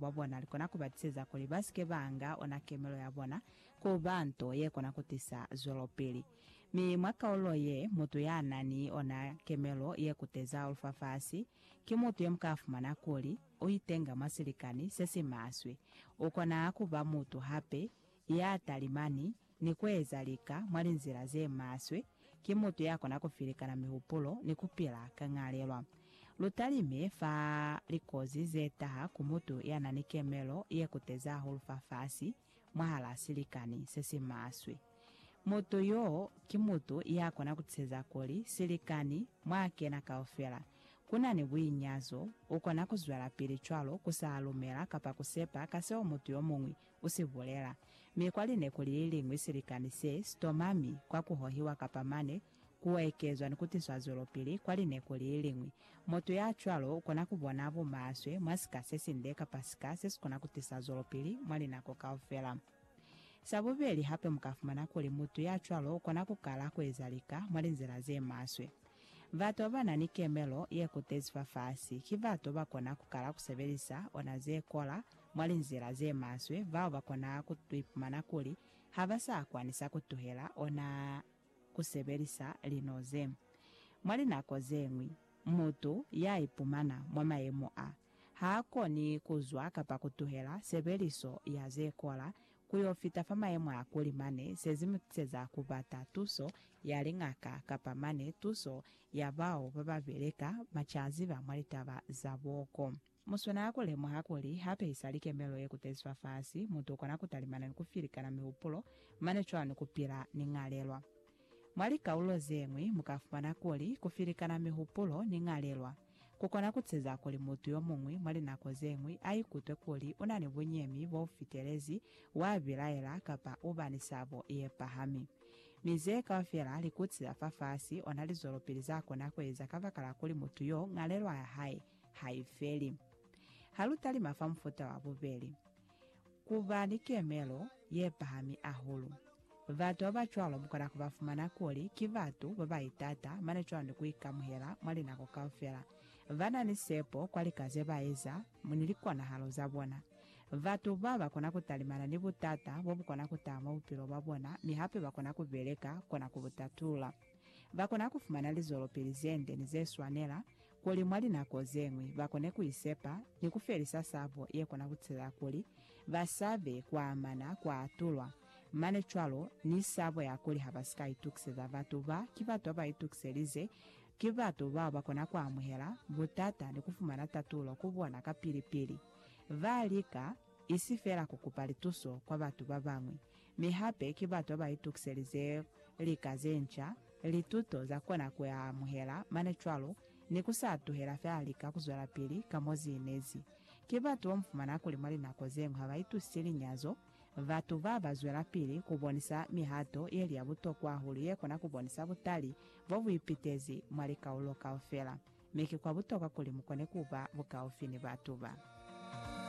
bwa bona li kona ku ba tiseza kuli ba si ke ba nga ona kemelo ya bona ku ba nto ye kona ku tisa zwelopili. Mi mwa kaulo ye, mutu ya na ni ona kemelo ye kuteza lufafasi ki mutu ye mu ka fumana kuli u itenga mwa silikani se si maswe. U kona ku ba mutu hape ya talimani ni kueza lika mwa linzila ze maswe, ki mutu ya kona ku filikana mihupulo ni ku pila ka ñalelwa. Lu talime fa likozi ze taha ku mutu ya na ni kemelo ye kuteza hahulu fafasi mwahal'a silikani se si maswe. Mutu y'o ki mutu ya kona ku tiseza kuli silikani mw'a kena kaufela ku na ni buinyazo, u kona ku zwelapili cwalo ku sa lumela kapa ku sepa ka seo mutu yo muñwi U si bulela. Mi kwa linekuli li liñwi silikani se sitoma mi kwa ku hohiwa kapa mane ku ekezwa ni ku tiswa zwelopili kwa linekuli li liñwi. Mutu ya cwalo u kona ku bona bumaswe mwa sika se sinde kapa sika se si kona ku tisa zwelopili mwa linako kaufela. Sa bubeli hape mu ka fumana kuli mutu ya cwalo u kona ku kala ku eza lika mwa linzila ze maswe. Batu ba ba na ni kemelo ye kutezi fafasi ki batu ba ba kona ku kala ku sebelisa ona ze kola mwa linzila ze maswe, bao ba kona ku ipumana kuli ha ba sa kwanisa ku tuhela ona ku sebelisa lino ze. Mwa linako ze ñwi, mutu ya ipumana mwa mayemo a, ha a koni ku zwa kapa ku tuhela sebeliso ya ze kola ku yo fita fa mayemo a kuli mane se zi mu tiseza ku bata tuso ya liñaka kapa mane tuso ya bao ba ba beleka mwa caziba mwa litaba za boko. Mu swanela ku lemuha kuli ha pehisa likemelo ye kutezi fafasi, mutu u kona ku talimana ni ku filikana mihupulo, mane cwalo ni ku pila ni ñalelwa. Mwa likaulo ze ñwi, mu ka fumana kuli ku filikana mihupulo ni ñalelwa ku kona ku ceza kuli mutu yo muñwi mwa linako ze ñwi a ikutwe kuli u na ni bunyemi bo fitelezi, wa bilaela, kapa u ba ni sabo ye pahami. Mi ze kaufela likutsi za fafasi, ona lizwelopili za kona ku eza kabakala kuli mutu yo, ñalelwa ya hae, ha i feli. Ha lu talima fa mufuta wa bubeli, ku ba ni kemelo ye pahami ahulu. Batu ba ba cwalo mu kona ku ba fumana kuli ki batu ba ba itata mane cwalo ni ku ikamuhela mwa linako kaufela. Ba na ni sepo kwa lika ze ba eza ni likonahalo za bona. Batu ba ba kona ku talimana ni butata bo bu kona ku taha mwa bupilo bwa bona mi hape ba kona ku beleka kona ku bu tatula. Ba kona ku fumana lizwelopili ze nde ni ze swanela kuli mwa linako ze ñwi ba kone ku isepa ni ku felisa sabo ye kona ku tisa kuli ba sa be kwa amana kwa atulwa, mane cwalo ni sabo ya kuli ha ba si ka itukiseza batu ba ki batu ba ba itukiselize, ki batu bao ba kona ku amuhela butata ni ku fumana tatulo ku bona kapili-pili. Ba lika isi fela ku kupa lituso kwa batu ba bañwi, mi hape ki batu ba ba itukiselize lika ze nca, lituto za kona ku ya amuhela mane cwalo, ni ku sa tuhela fela lika ku zwelapili ka mo zi inezi. Ki batu bo mu fumana kuli mwa linako ze ñwi ha ba itusisi linyazo, batu ba ba zwelapili ku bonisa mihato ye li ya butokwa hahulu ye kona ku bonisa butali bo bu ipitezi mwa likaulo kaufela. Mi ki kwa butokwa kuli mu kone ku ba bukaufi ni batu ba.